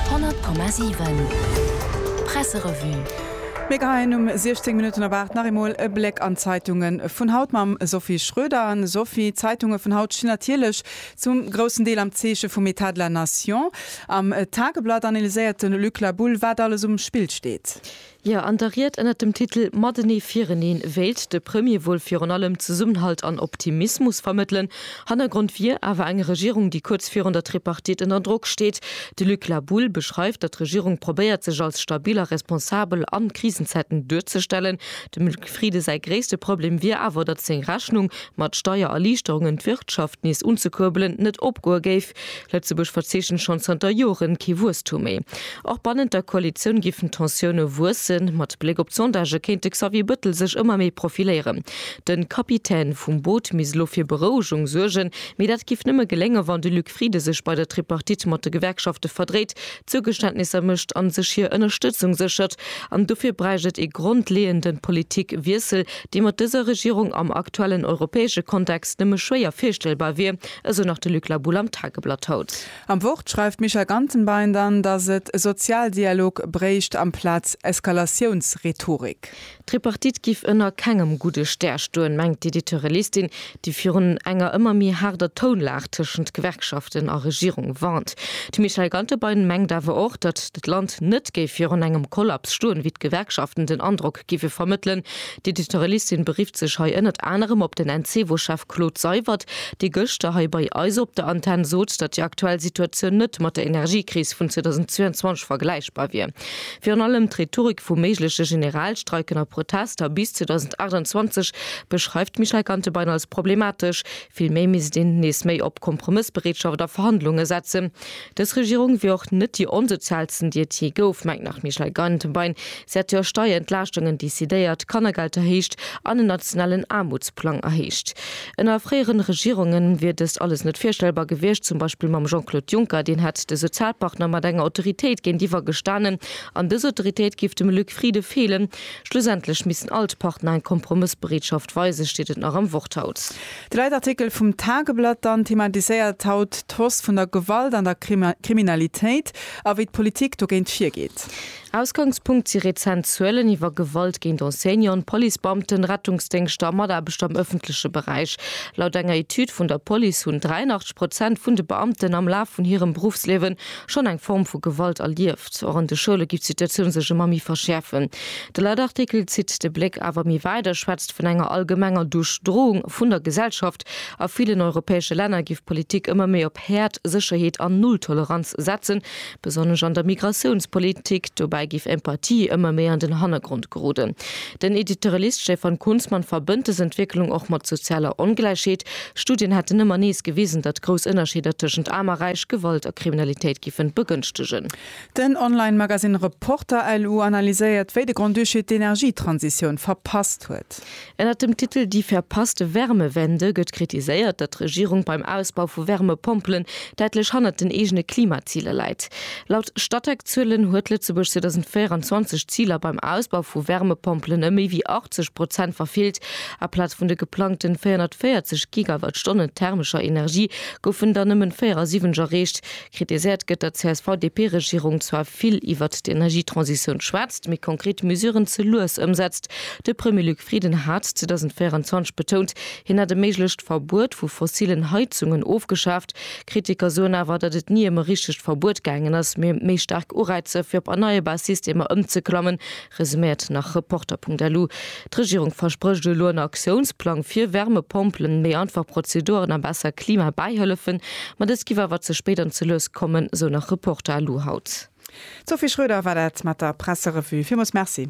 100,7 Presserevue. Mir geheien um 16 Minutten op 8 nach eemol e Bléck an d'Zeitunge vun haut mam Sophie Schroeder. An Sophie, d'Zeitunge vun haut stinn natierlech zum groussen Deel am Zeeche vum État de la Nation. Am Tageblatt analyséiert de Luc Labulle, wat alles um Spill steet. Jo, an der Ried ënnert dem Titel Matenee fireneen wéilt de Premier wuel virun allem Zesummenhalt an Optimismus vermëttelen. Hannergrond wier awer eng Regierung, déi kuerz virun der Tripartite ënner Drock steet. De Luc Laboule beschreift, datt d'Regierung probéiert, sech als stabil a responsabel an Krisenzäiten duerzestellen. Dem Luc Frieden säi gréisste Problem wier awer, datt seng Rechnung, mat Steiererliichterungen d'Wirtschaft nees unzekuerbelen, net opgoe géif. Lëtzebuerg verzeechent schonn zanter Joren kee Wuesstum méi. Och bannent der Koalitioun giffen d'Tensioune wuessen. Mat Bléck op d'Sondagë kéint de Xavier Bëttel sech ëmmer méi profiléieren. De Kapitän vum Boot misst elo fir Berouegung suergen. Mee dat géif nëmme geléngen, wann de Luc Frieden sech bei der Tripartite mat de Gewerkschafte verdréit, Zougeständnisser mécht an sech hir Ënnerstëtzung séchert. An dofir bräicht et ee grondleeënde Politikwiessel, dee mat dëser Regierung am aktuellen europäesche Kontext nëmme schwéier virstellbar wier, esou nach de Luc Labull am Tageblatt haut. Am Wort schreift d'Micha Gantenbein dann, datt et Sozialdialog bréicht amplaz Eskalatiounsrhetorik. D'Tripartite giff ënner kengem gudde Stär stoen, mengt d'Editeurellistin, déi virun enger ëmmer méi haarder Tounlag tëschent Gewerkschaften a Regierung warnt. De Michael Gantebein mengt awer och, datt d'Land net géif virun engem Kollaps stoen, wéi d'Gewerkschaften den Androck gife vermëttelen. D'Editorialistin berifft sech hei ënnert anerem op den Encevo-Chef Claude Seywert, dee gëschter hei bei eis op der Antenn sot, datt déi aktuell Situatioun net mat der Energiekris vun 2022 vergläichbar wier. Virun allem d'Rhetorik vu méigleche Generalstreiken a Protester bis 2028 beschreift d'Michèle Gantebein als problematesch. Vill méi misst een nees méi op Kompromëssbereetschaft a Verhandlunge setzen. Dës Regierung wier och net déi onsozialsten, déi et jee gouf, mengt nach d'Michèle Gantenbein. Si hätt jo Steierentlaaschtunge decidéiert, Kannergeld erhéicht an en nationalen Aarmutsplang erhéicht. Ënner fréieren Regierunge wier dëst alles net virstellbar gewiescht, zum Beispill mam Jean-Claude Juncker. Deen hätt de Sozialpartner mat enger Autoritéit géintiwwer gestanen an dës Autoritéit géif dem Luc Frieden feelen. Schlussendlech missten all d'Partner eng Kompromëssbereetschaft weisen, steet et nach am Wort haut. De Leitartikel vum Tageblatt dann thematiséiert haut d'Hausse vun der Gewalt an der Kriminalitéit a wéi d'Politik dogéint virgeet. Ausgangspunkt si rezent Zuelen iwwer Gewalt géint Enseignanten, Policebeamten, Rettungsdéngschter a Mataarbechter am ëffentleche Beräich. Laut enger Etüd vun der Police hunn 83 Prozent vun de Beamten am Laf vun hirem Beruffsliewen schonn eng Form vu Gewalt erlieft. Hapt och an de Schoule géif d'Situatioun sech ëmmer méi verschäerfen. De Leitartikel zitt de Bléck awer méi wäit a schwätzt vun enger allgemenger Duerchdroung vun der Gesellschaft. A villen europäesche Länner géif d'Politik ëmmer méi op Häert, Sécherheet an Nulltoleranz setzen, besonnesch an der Migratiounspolitik. Dobäi géif Empathie ëmmer méi an den Hannergrond geroden. Den Editorialist Stefan Kunzmann verbënnt dës Entwécklung och mat sozialer Ongläichheet. Studien hätten ëmmer nees gewisen, datt grouss Ënnerscheeder tëschent Aarm a Räich Gewalt a Kriminalitéit giffen begënschtegen. Den Online-Magasinn Reporter-LU analyséiert, wéi de Grand-Duché d'Energietransitioun verpasst huet. Ënnert dem Titel Die verpasste Wärmewende gëtt kritiséiert, datt d'Regierung beim Ausbau vu Wärmepompelen däitlech hannert den eegene Klimaziler läit. Laut Statec-Zuelen huet Lëtzebuerg 2024 d'Ziler beim Ausbau vu Wärmepompelen ëm méi wéi 80 Prozent verfeelt. Aplaz vun de geplangten 440 Gigawattstonnen thermescher Energie goufen der nëmmen 74 erreecht. Kritiséiert gëtt, datt d'CSV-DP-Regierung zwar vill iwwert d'Energietransitioun schwätzt, mee konkret Mesuren ze lues ëmsetzt. De Premier Luc Frieden hat 2024 betount, hien hätt e méiglecht Verbuet vu fossillen Heizungen ofgeschaaft. Kritiker soen awer, datt et ni ëm e richtegt Verbuet gaangen ass, mee ëm méi staark Ureizer fir op erneierbar Systemer ëmzeklammen, Resuméiert nach Reporter.lu, D'Regierung versprécht elo en Aktiounsplang fir Wärmepompelen, méi einfach Prozeduren a besser Klimabäihëllefen. Ma dës giff awer ze spéit an ze lues kommen, sou nach Reporter.lu haut. D'Sophie Schroeder war dat mat der Presserevue. Villmools Merci.